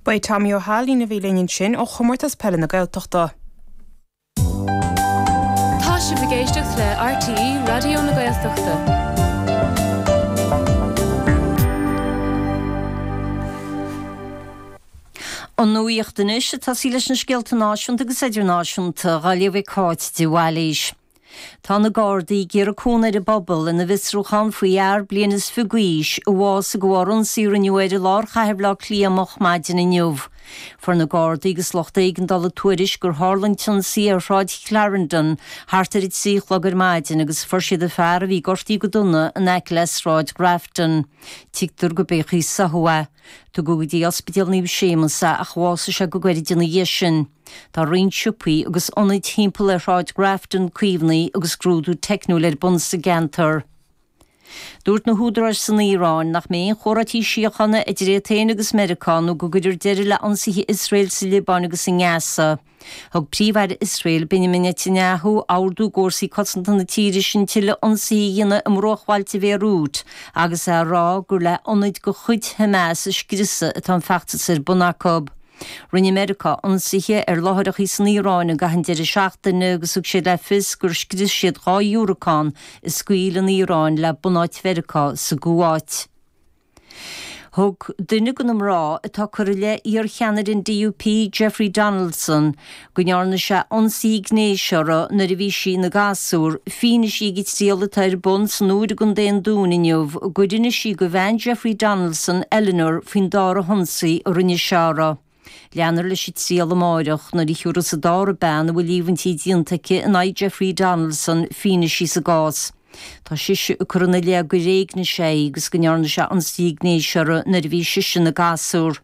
Ba é Tommy Ó hAilín a bhí linn ansin ó Chomórtas Peile na Gaeltachta. Tá sibh ag éisteacht le RTÉ Raidió na Gaeltachta. An nuaíocht anois ag tosaí leis na scéalta náisiúnta agus idirnáisiúnta dhá léamh ag Cáit de Bhailís. Tá na Gardaí ag iarraidh cúnamh ar an bpobal ina bhfiosrúchán faoi fhear bliain is fiche d'aois a bhásaigh de bharr ionsaí a rinneadh air i lár chathair Bhaile Átha Cliath moch maidin inniu. Fuair na Gardaí agus lucht éigeandála tuairisc gur tharla an t-ionsaí ar Shráid Chlarendon thart ar a trí a chlog ar maidin agus fuair siad an fear a bhí gortaithe go dona in aice le Sráid Ghrafton. Tuigtear gurb é an chaoi ar sáthadh é. Tugadh go dtí Ospidéal Naomh Séamas é ach bhásaigh sé go gairid ina dhiaidh sin. Tá roinnt siopaí agus ionaid thimpeall ar Shráid Grafton, caomhnaithe agus scrúdú teicniúil ar bun sa gceantar. Dúirt na húdaráis san Iaráin nach mbeidh aon chomhráití síochána idir iad féin agus Meiriceá nó go gcuirfear deireadh le ionsaithe Iosrael sa Liobáin agus i nGaza. Thug Príomh-Aire Iosrael, Benjamin Netanyahu, ordú d'fhórsaí cosanta na tíre sin tuilleadh ionsaithe a dhéanamh i mbruachbhailte Bhéiriút agus é ag rá gur le hionaid de chuid Hamas a scriosadh atá an feachtas ar bun acu. Rinne Meiriceá ionsaithe ar láithreachaí san Iaráin i gcaitheamh an deireadh seachtaine agus thug siad le fios gur scrios siad dhá dhiúracán a scaoil an Iaráin le bunáit Mheiriceá sa gCuáit. Thug duine de na mná atá ag cur i leith iar-cheannaire an DUP, Jeffrey Donaldson, go ndearna sé ionsaí gnéis uirthi nuair a bhí sí ina gasúr, fianaise ag an triail atá ar bun san Iúir i gContae an Dúin inniu gur inis sí do bhean Jeffrey Donaldson, Eleanor, faoin dara hionsaí a rinne sé uirthi. Leanfar leis an triail amárach nuair a thiúrfas an dara bean a bhfuil líomhaintí déanta aici in aghaidh Jeffrey Donaldson fianaise sa gcás. Tá sise ag cur ina leith gur éignigh sé í agus go ndearna sé ionsaí gnéis uirthi nuair a bhí sise ina gasúr.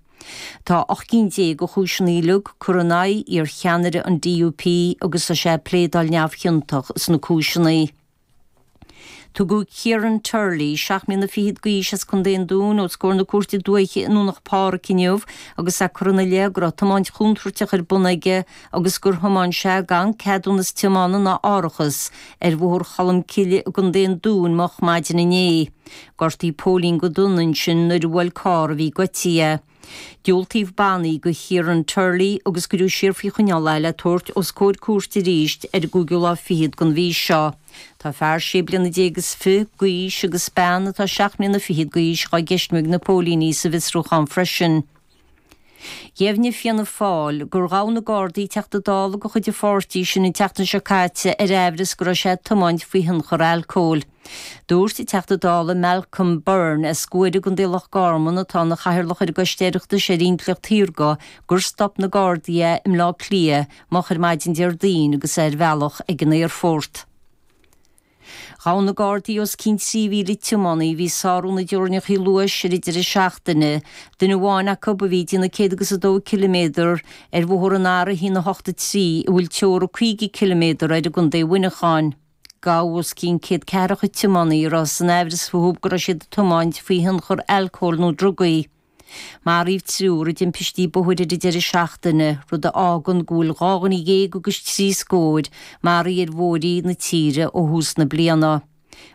Tá ocht gcinn déag de chúiseanna uilig curtha in aghaidh iarcheannaire an DUP agus tá sé ag pléadáil neamhchiontach sna cúiseanna. Tugadh Kieran Turley, seacht mbliana fichead d'aois as Contae an Dúin, os comhair na cúirte dúiche i nDomhnach Páraic inniu agus é curtha ina leith go raibh tiomáint chontúirteach ar bun aige agus gur thiomáin sé gan ceadúnas tiomána ná árachas ar Bhóthar Cholm Cille i gContae an Dúin moch maidin inné. Gortaíodh póilín go dona ansin nuair a bhuail carr a bhí goitithe. Diúltaíodh bannaí do Chiaran Turley agus cuireadh siar faoi choinneáil é le tabhairt os comhair cúirte arís ar an gcúigiú lá fichead den mhí seo. Tá fear sé bliana déag is fiche d'aois agus bean atá seacht mbliana fichead d'aois dhá gceistiú ag na póilíní sa bhfiosrúchán freisin. Dheimhnigh Fianna Fáil gur ghabh na Gardaí Teachta Dála de chuid an pháirtí sin an tseachtain seo caite ar amhras go raibh sé ag tiomáint faoi thionchar alcóil. Dúirt an Teachta Dála Malcolm Byrne as Guaire i gContae Loch Garman, atá ina chathaoirleach ar an gCoiste Oireachtais ar Intleacht Shaorga, gur stop na Gardaí é i mBleá Cliath moch ar maidin Déardaoin agus é ar a bhealach ag an aerfort. Ghabh na Gardaí os cionn 3,000 tiománaí a bhí ag sárú na dteorainneacha luais ar an deireadh seachtaine, duine amháin acu a bhí ag déanamh 102 km ar bhóthar an R1 8 3 a bhfuil teora 50 km air i gContae Mhuineacháin. Gabhadh os cionn 100 ceathracha tiománaí a raibh sé in amhras fúthu go raibh siad ag tiomáint faoi thionchar alcóil nó drugaí. Maraíodh triúr i dtimpistí bóthair ar an deireadh seachtaine, rud a fhágann go bhfuil dhá dhuine dhéag agus trí scór maraithe ar bhóithrí na tíre ó thús na bliana.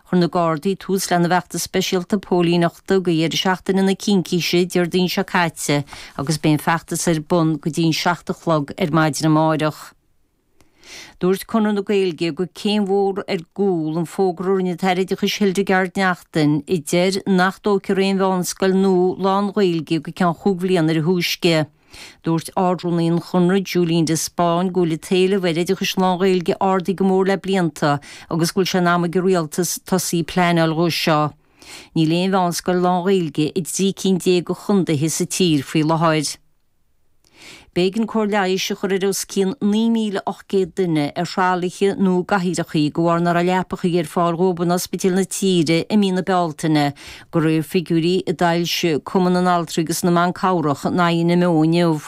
Chuir na Gardaí tús lena bhfeachtas speisialta póilíneachta do dheireadh seachtaine na Cincíse Déardaoin seo caite agus beidh an feachtas ar bun go dtí an seacht a chlog ar maidin amárach. Dúirt Conradh na Gaeilge gur céim mhór ar gcúl an fógra a rinne an tAire Oideachais Hildegarde Naughton a deir nach dtógfar aon mheánscoil nua lán-Ghaeilge go ceann chúig bhliana ar a thúisce. Dúirt Ard-Rúnaí an Chonradh, Julian de Spáinn, go bhfuil an t-éileamh ar oideachas lán-Ghaeilge ardaithe go mór le blianta agus go bhfuil sé in am ag an Rialtas tosaí ag pleanáil dhó seo. Níl aon mheánscoil lán-Ghaeilge i dtrí cinn déag de chondaetha sa tír faoi láthair. B'éigean cóir leighis a chur ar os cionn 9,800 duine ar thralaithe nó i gcathaoireacha de bharr nach raibh leapachaí ar fáil dhóibh in ospidéil na tíre i mí na Bealtaine, de réir figiúirí a d'fhoilsigh Cumann na nAltraí agus na mBan Cabhrach an INMO inniu.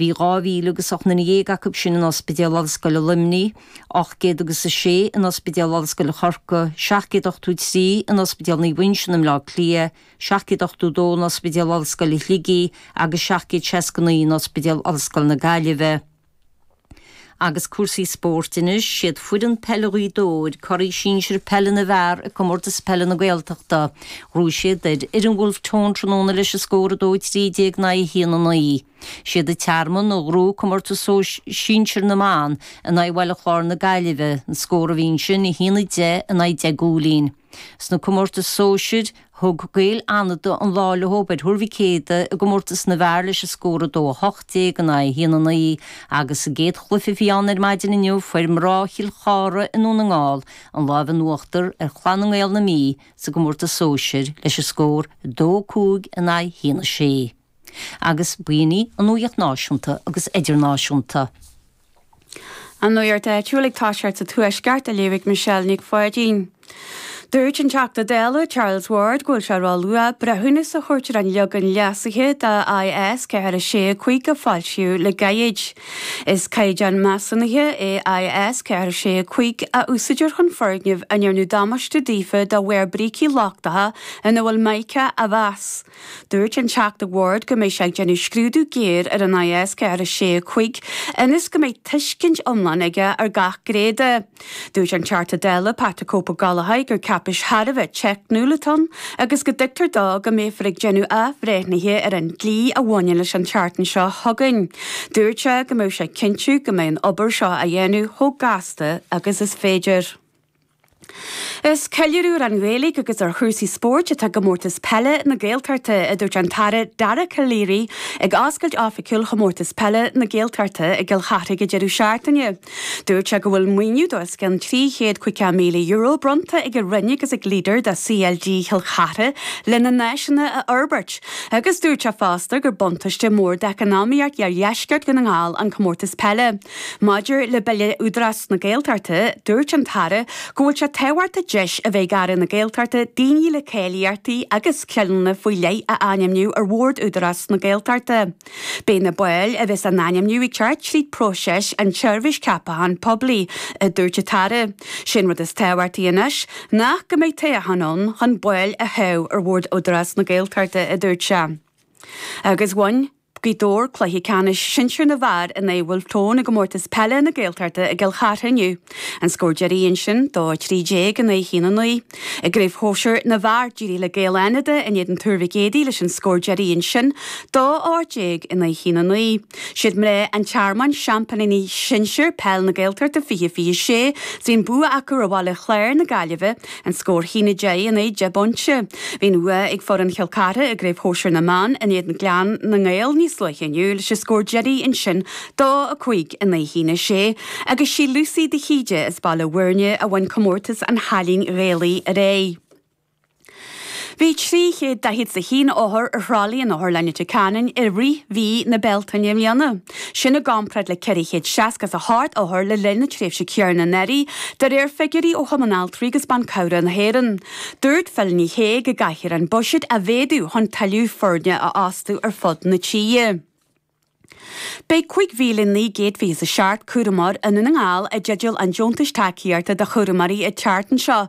Bhí dhá mhíle agus ocht nduine dhéag acu sin in Ospidéal Ollscoile Luimnigh, ocht gcéad agus a sé in Ospidéal Ollscoile Chorcaigh, seacht gcéad ochtó trí in Ospidéal Naomh Uinseann i mBleá Cliath, 782 in Ospidéal Ollscoile Shligigh agus 769 in Ospidéal Ollscoile na Gaillimhe. Agus cúrsaí spóirt anois, siad foireann peile Ghaoth Dobhair, curaidh sinsir peile na bhfear i Comórtas Peile na Gaeltachta. Ghnóthaigh siad ar fhoireann Wolfe Tones tráthnóna leis an scór 2 13 in aghaidh 1 9. Siad an Tearmann a ghnóthaigh Comórtas Sinsir na mBan in aghaidh Bhaile Chláir na Gaillimhe, an scór a bhí ansin 1 10 in aghaidh 10 gcúilín. Sna comórtais sóisir, thug Gaeil Fhánada an lá leo ar Thuar Mhic Éadaigh i gcomórtas na bhfear leis an scór 2 18 in aghaidh 1 9, agus sa gcéad chluiche a bhí ann ar maidin inniu fuair mná Chill Chartha i nDún na nGall an lámh in uachtar ar Chlann na nGael na Mí sa gcomórtas sóisir leis an scór 2 5 in aghaidh 1 6. Agus b'in í an nuaíocht náisiúnta agus idirnáisiúnta. An nuaíocht áitiúil ag toiseacht sa Tuaisceart á léamh ag Michelle Nic Pháidín. Dúirt an Teachta Dála Charles Ward go bhfuil sé ró luath breithiúnas a thabhairt ar an leagan leasaithe de IS 465 a foilsíodh le gairid. Is caighdeán measúnaithe é IS 465 a úsáidtear chun foirgnimh a ndearnadh damáiste daofa de bharr brící lochtacha ina bhfuil Mica a mheas. Dúirt an Teachta Ward go mbeidh sé ag déanamh scrúdú géar ar an IS 465 ionas go mbeidh tuiscint iomlán aige ar gach gné de. Dúirt an Teachta Dála Pat 'the Cope' Ó Gallchóir gur cáipéis thar a bheith teicniúil atá ann agus go dtuigtear dó go mbeifear ag déanamh athbhreithnithe ar an dlí a bhaineann leis an tseachtain seo chugainn. Dúirt sé go mbeidh sé ag cinntiú go mbeidh an obair seo á dhéanamh chomh gasta agus is féidir. Is ceiliúradh ar an Ghaeilge agus ar chúrsaí spóirt atá i gComórtas Peile na Gaeltachta, a dúirt an tAire Dara Calleary ag oscailt oifigiúil Chomórtas Peile na Gaeltachta i gCill Charthaigh ag an deireadh seachtaine. Dúirt sé go bhfuil maoiniú de os cionn €350,000 bronnta ag an Roinn agus ag Leader do CLG Chill Charthaigh lena n-áiseanna a fhorbairt agus dúirt sé fosta gur buntáiste mór d'eacnamaíocht iardheisceart Dhún na nGall an Comórtas Peile Maidir le Bille Údarás na Gaeltachta, dúirt an tAire go bhfuil sé tábhachtach deis a bheith ag Aire na Gaeltachta daoine le cáilíochtaí agus scileanna faoi leith a ainmniú ar Bhord Údarás na Gaeltachta. Beidh na baill a bheas á n-ainmniú ag teacht tríd próiseas an tseirbhís ceapacháin poiblí, a dúirt an tAire. Sé an rud is tábhachtaí anois ná go mbeidh toghchán ann chun baill a thoghadh ar Bhord Údarás na Gaeltachta, a dúirt sé. Agus bhain. Gaoth Dobhair cluiche ceannais sinsir na bhfear in aghaidh Bhulf Tón i gComórtas Peile na Gaeltachta i gCill Chartha inniu. An scór deiridh ansin dó 13 in aghaidh 1 9. I gCraobh Shóisir na bhFear d'éirigh le Gaeil Fhánada in éadan Tuar Mhic Éadaigh leis an scór deiridh ansin dó 18 in aghaidh 1 9. Siad mná an Tearmainn seampainí sinsir peile na Gaeltachta 20 26 bhí an bua acu ar Bhaile Chláir na Gaillimhe An scór 1 10 in aghaidh deich bpointe. Bhí an bhuaidh ag foireann Chill Chartha i gCraobh Shóisir na mBan in éadan Clann na nGael níos luaithe inniu leis an scór deiridh ansin dó 5 in aghaidh 1 6 agus sí Lucy de hÍde as Baile Bhuirne a bhain comórtas an chailín Ghaelaigh aréir. Bhí 341 othar ar thralaí in Otharlann Leitir Ceanainn i rith mhí na Bealtaine i mbliana. sin i gcompráid le 468 othar le linn na tréimhse céanna anuraidh, de réir figiúirí ó Chumann Altraí agus Ban Cabhra na hÉireann. Dúirt Phil Ní Sheaghdha go gcaithfear an buiséad a mhéadú chun tuilleadh foirne a fhostú ar fud na tíre. Beidh 5,927 cúramóir i nDún na nGall i dteideal an deontais tacaíochta do chúramóirí an tseachtain seo.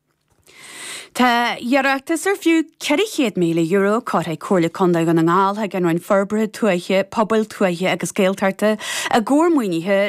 Tá iarratas ar fiú €400,000 curtha ag Comhairle Contae Dhún na nGall chuig an Roinn Forbartha Tuaithe, Pobail Tuaithe agus Gaeltachta i gcomhair maoinithe